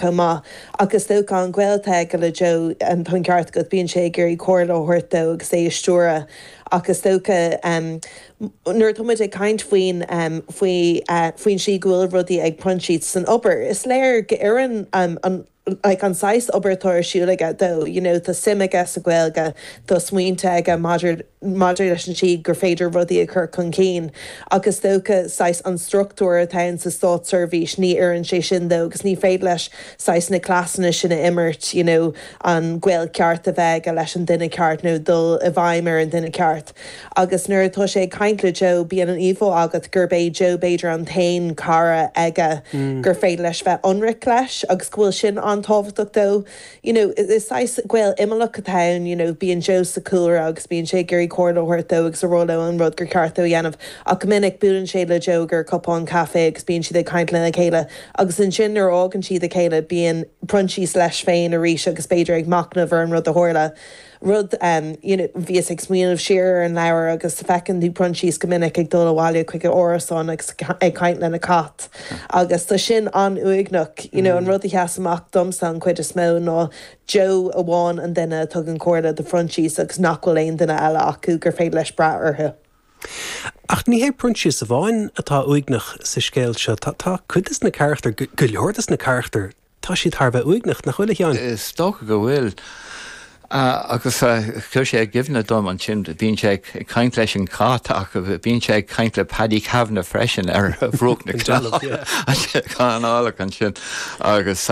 chomh maith ach is dócha an gaol atá aige le Joe tá an ceart agat bíonn sé ag iarraidh comhairle a thabhairt dó agus é a stiúradh ach is dócha nuair atá muid ag caint faoin faoi faoin tslí go bhfuil rudaí ag proinsias san obair is léir go n-oireann an like an saghas obair atá ar siúl aige dó you know tá suim aige sa Ghaeilge tá smaointe aige maidir maidir leis an tslí gur féidir rudaí a chur chun cinn ach is dócha saghas an struchtúr atá ann sa státseirbhís ní oireann sé sin dó agus ní féidir leis saghas na cleasanna sin a imirt you know an gaol ceart a bheith aige leis an duine ceart nó dul i bhfeidhm ar an duine ceart agus nuair atá sé ag caint le Joe bíonn an íomhá agat gurb é Joe b'fhéidir an t-aon cara aige gur féidir leis bheith ionraic leis agus go bhfuil sin an-tábhachtach dó. you know, is saghas gaol imeallach atá ann, you know, bíonn Joe sa chúlra agus bíonn sé ag iarraidh comhairle a thabhairt dó agus ag rá leis an rud gur ceart dó a dhéanamh ach go minic buaileann sé le Joe i gcomhair cupán caife agus bíonn siad ag caint lena chéile agus ansin nuair a fhágann siad a chéile bíonn Proinsias leis féin arís agus b'fhéidir ag machnamh ar an rud a tharla. rud, you know, bhíos ag smaoineamh siar ar an leabhar agus feiceann tú Proinsias go minic ag dul abhaile chuig a árasán agus ag caint lena cat agus tá sin an-uaigneach, you know, an rud a sheas amach domsa an chuid is mó ná Joe amháin an duine a tugann comhairle do Phroinsias agus nach bhfuil aon duine eile acu gur féidir leis brath orthu. Ach ní hiad Proinsias amháin atá uaigneach sa scéal seo, tá tá cuid de na carachtair, go leor de na carachtair, Tá siad thar a bheith uaigneach, nach bhfuil, a Sheáin? Is dócha go bhfuil. Agus chuir sé i gcuimhne dom ansin, bíonn sé ag caint leis an chat ach bíonn sé ag caint le Paddy Kavanagh freisin ar bhruach na canálach ansin. Agus,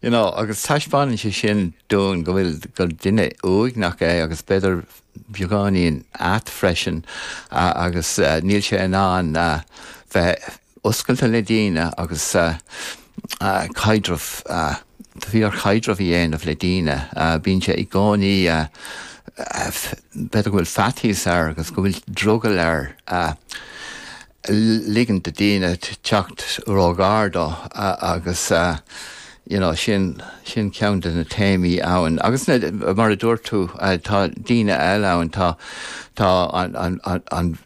you know, agus taispeánann sé sin dúinn go bhfuil, gur duine uaigneach é agus b'fhéidir beagáinín ait freisin agus níl sé in ann bheith, oscailte le daoine agus caidreamh, fíor-chaidreamh a dhéanamh le daoine. Bíonn sé i gcónaí, b'fhéidir go bhfuil faitíos air agus go bhfuil drogall air ligint do daoine teacht ró-ghar dó agus you know sin, sin ceann de na téamaí ann agus mar a dúirt tú tá daoine eile ann, tá tá an.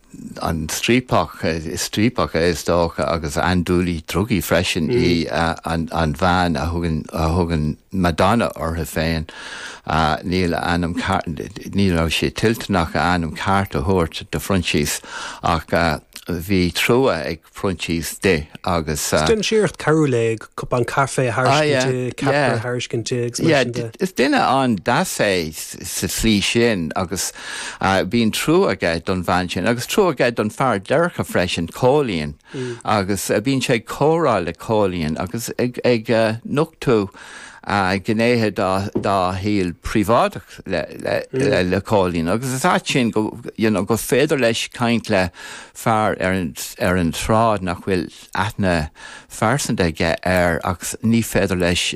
an striapach, striapach í is dócha agus andúileach drugaí freisin í an bhean a thugann, a thugann Madonna uirthi féin. Níl a ainm cear, ní raibh sí toilteanach a hainm ceart a thabhairt do Phroinsias ach bhí trua ag. Phroinsias di agus. Is duine saghas carthanúil é, ag cupán caife a thairscint di, ceapaire a thairscint di agus mar sin de. Is duine an-deas é sa slí sin agus bíonn trua aige don bhean sin agus trua aige don fear déirce freisin Cóilín agus bíonn sé ag comhrá le Cóilín agus ag nochtú gnéithe dá shaol príobháideach le Cóilín agus is ait sin gur féidir leis caint le fear ar an tsráid nach bhfuil aithne phearsanta aige air agus ní féidir leis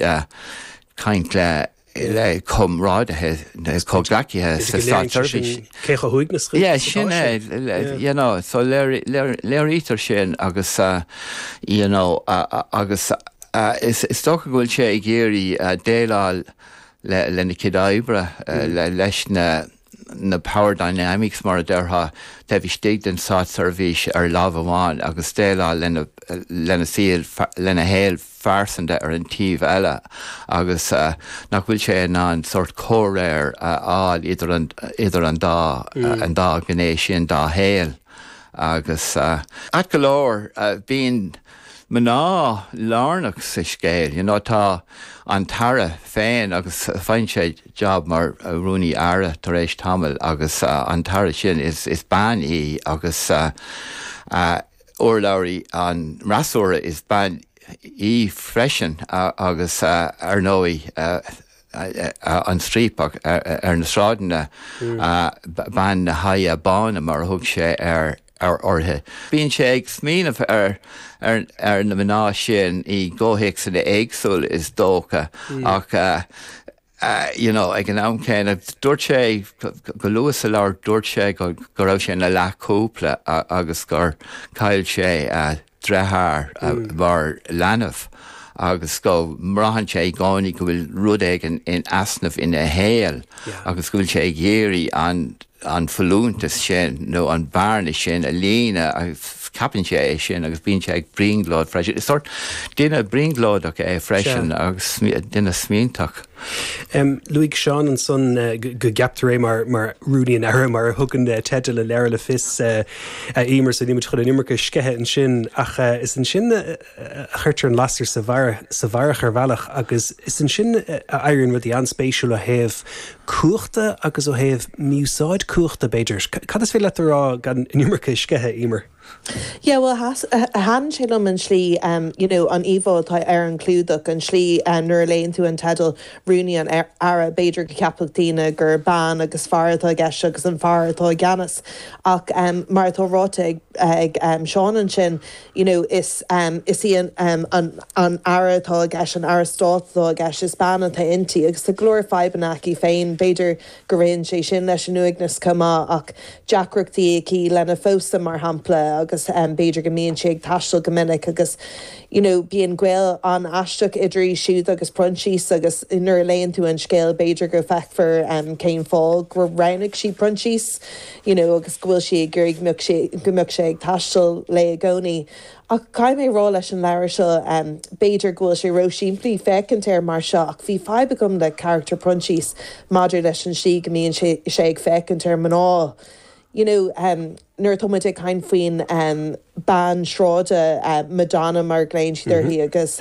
caint le comrádaithe nó comhghleacaithe sa státseirbhís. Sin é, you know, so léirítear sin agus you know agus is dócha go bhfuil sé ag iarraidh déileáil lena chuid oibre leis na, na power dynamics mar a déarfá, taobh istigh den státseirbhís ar láimh amháin agus déileáil lena saol, lena shaol phearsanta ar an taobh eile agus nach bhfuil sé in ann sórt comhréir a fháil idir an, idir an dá, an dá ghné sin dá shaol agus, ait go leor, bíonn. mná lárnach sa scéal. You know, tá an tAire féin agus faigheann sé job mar Rúnaí Aire tar éis tamaill agus an tAire sin is bean í agus urlabhraí an fhreasúra is bean í freisin agus ar ndóigh, an striapach ar na sráideanna, bean na haghaidhe báine mar a thug sé uirthi. Bíonn sé ag smaoineamh ar na mná sin i gcomhthéacsanna éagsúla is dócha ach you know ag an am céanna dúirt sé go luath sa leabhar dúirt sé go raibh sé ina leathchúpla agus gur chaill sé a dheartháir, mar leanbh agus go mbraitheann sé i gcónaí go bhfuil rud éigin in easnamh ina shaol agus go bhfuil sé ag iarraidh an an folúntas sin nó an bearna sin a líonadh agus ceapann sé é sin agus bíonn sé ag brionglóid freisin. Is sórt duine brionglóideach é freisin agus duine smaointeach. Luaigh Seán ansan go gceaptar é mar Rúnaí an Aire, mar a thugann teideal an leabhair le fios a Emer, so nílimid chun an iomarca a sceitheadh ansin. Ach is ansin a chuirtear an lasair sa bharrach ar bhealach agus is ansin a éiríonn rudaí an-spéisiúil ó thaobh cumhachta agus ó thaobh mí-úsáid cumhachta, b'fhéidir. Cad is féidir leat a rá gan an iomarca a sceitheadh, Emer? Yeah, bhuel, thaitn sé liom an slí, you know, an íomhá atá ar an gclúdach, an slí nuair a léann tú an teideal, Rúnaí an Aire, b'fhéidir go gceapfadh daoine gur bean agus fear atá i gceist agus an fear atá i gceannas ach mar atá ráite ag Seán ansin, you know, is í an Aire atá i gceist, an Aire Stáit atá i gceist, is bean atá inti agus tá go leor fadhbanna aici féin, b'fhéidir go gcuireann sé sin leis an uaigneas chomh maith ach deacrachtaí aici lena pósadh mar shampla agus b'fhéidir go mbíonn sí ag taisteal go minic agus you know bíonn gaol an-aisteach idir í siúd agus Proinsias agus nuair a léann tú an scéal b'fhéidir go feicfear cén fáth gur roghnaigh sí Proinsias you know agus go bhfuil sí ag iarraidh go mbeadh sé ag taisteal léi i gcónaí. Ach caithfidh mé a rá leis an leabhar seo, b'fhéidir go bhfuil sé ró-simplí féachaint air mar seo, ach bhí fadhb agam le carachtar Proinsias maidir leis an slí go mbíonn sé ag féachaint ar mhná, you know, nuair atá muid ag caint faoin bean sráide, Madonna mar a ghlaonn siad uirthi, agus.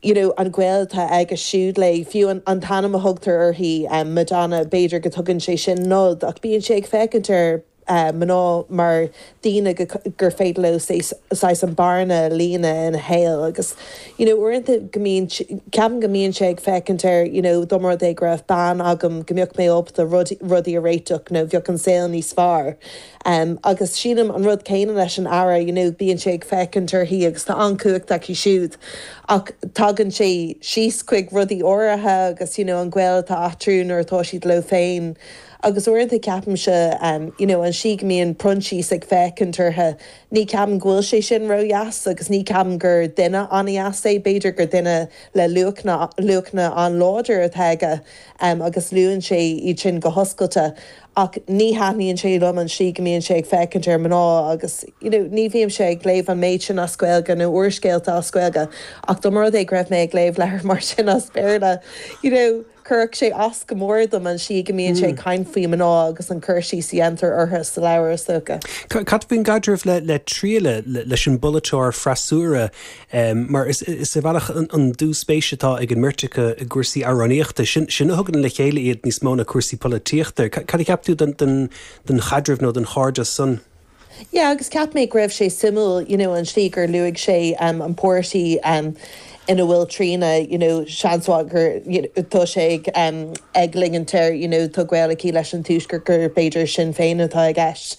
you know an gaol atá aige siúd léi. Fiú an t-ainm a thugtar uirthi, Madonna, b'fhéidir go dtugann sé sin nod ach bíonn sé ag féachaint ar mhná mar dhaoine gur féidir leo saghas an bhearna a líonadh ina shaol agus you know uaireanta go mbíonn, ceapaim go mbíonn sé ag féachaint ar you know dá mba rud é go raibh bean agam go mbeadh mé ábalta rudaí a réiteach nó bheadh an saol níos fearr. Em, agus sílim an rud céanna leis an Aire, you know, bíonn sé ag féachaint uirthi agus tá an-chumhacht aici siúd ach tagann sé síos chuig rudaí áirithe agus, you know, an gaol atá eatarthu nuair atá siad leo féin agus uaireanta ceapaimse, em, you know, an slí go mbíonn Proinsias ag féachaint orthu, ní ceapaim go bhfuil sé sin ró-dheas agus ní ceapaim gur duine an-dheas é, b'fhéidir gur duine le luachanna, luachanna an-láidir atá aige, em, agus luann sé iad sin go hoscailte Ach ní thaitníonn sé liom an slí go mbíonn sé ag féachaint ar mná agus you know ní bhímse ag léamh an méid sin as Gaeilge nó úrscéalta as Gaeilge ach dá mba rud é go raibh mé ag léamh leabhar mar sin as Béarla you know chuirfeadh sé as go mór dom an slí go mbíonn sé ag caint faoi mná agus an cur síos a dhéantar orthu sa leabhar is dócha. Cad faoin gcaidreamh le Tríona leis an bpolaiteoir freasúra Mar is ar bhealach an dúspéis atá ag an mbeirt acu i gcúrsaí amhránaíochta, sin a thugann le chéile iad níos mó ná cúrsaí polaitíochta. Cad a cheap tú den chaidreamh nó den chairdeas san? Yeah, agus cheap mé go raibh sé suimiúil, you know, an tslí gur luaigh sé an páirtí ina bhfuil Tríona, you know, seans mhaith gur, you know, tá sé ag ligint air, you know, tá gaol aici leis an Tuaisceart, gur b'fhéidir Sinn Féin atá i gceist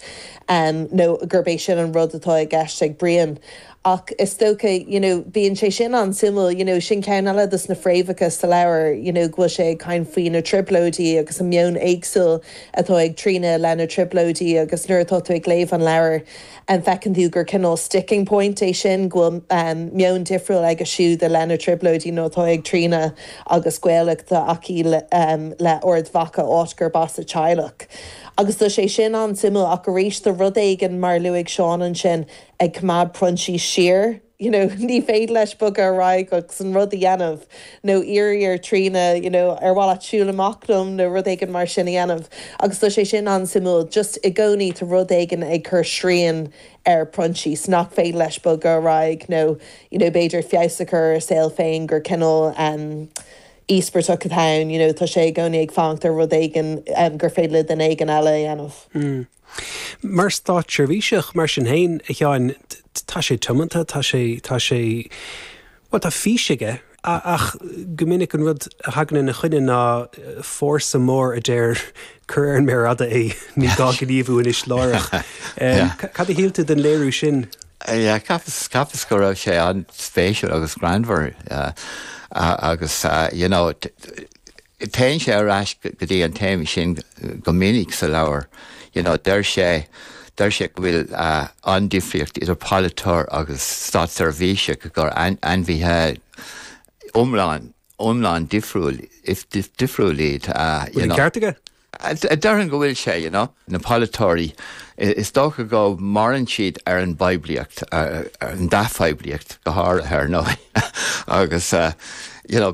nó gurb é sin an rud atá i gceist ag Brian. Ach is dócha, you know, bíonn sé sin an-suimiúil, you know, sin ceann eile dos na fréamhacha sa leabhar, you know, go bhfuil sé ag caint faoi na trioblóidí agus an meon éagsúil atá ag Tríona le na trioblóidí agus nuair atá tú ag léamh an leabhair feiceann tú gur cineál sticking point é sin, go bhfuil meon difriúil aige siúd i leith na trioblóidí nó atá ag Tríona agus gaol atá aici le Ard Mhacha áit gurb as a teaghlach. Agus tá sé sin an-suimiúil ach arís tá rud éigin mar a luaigh Seán ansin, ag coimeád Proinsís siar, you know, ní féidir leis bogadh ar aghaidh agus an rud a dhéanamh nó iarraidh ar Tríona, you know, ar mhaith leat siúl amach liom nó rud éigin mar sin a dhéanamh agus tá sé sin an-suimiúil, just i gcónaí tá rud éigin ag cur srian ar Phroinsís nach féidir leis bogadh ar aghaidh nó, you know, b'fhéidir feabhas a chur ar a saol féin gur cineál, em, íospartach atá ann, you know, tá sé i gcónaí ag fanacht ar rud éigin, em, gur féidir le duine éigin eile a dhéanamh. Mm. Mar státseirbhíseach, mar sin féin, a Sheáin, tá sé tiomanta, tá sé, tá sé, bhuel, tá fís aige. Ach go minic an rud a thagann ina choinne ná fórsa mór a deir, cuir ar an méar fhada é, ní gá gníomhú anois láithreach. Cad a shíl tú den léiriú sin? Cheapas go raibh sé an-spéisiúil agus greannmhar agus, you know, Téann sé ar ais go dtí an téama sin go minic sa leabhar. You know, deir sé, deir sé go bhfuil an-difríocht idir polaiteoir agus státseirbhíseach, gur ainmhithe iomlán, iomlán difriúil, difriúil iad, you know. Bhfuil an ceart aige? Á déarfainn go bhfuil sé, you know. Na polaiteoirí, is dócha go maireann siad ar an bpoiblíocht, ar an dea-phoiblíocht go háirithe, ar ndóigh, agus, you know,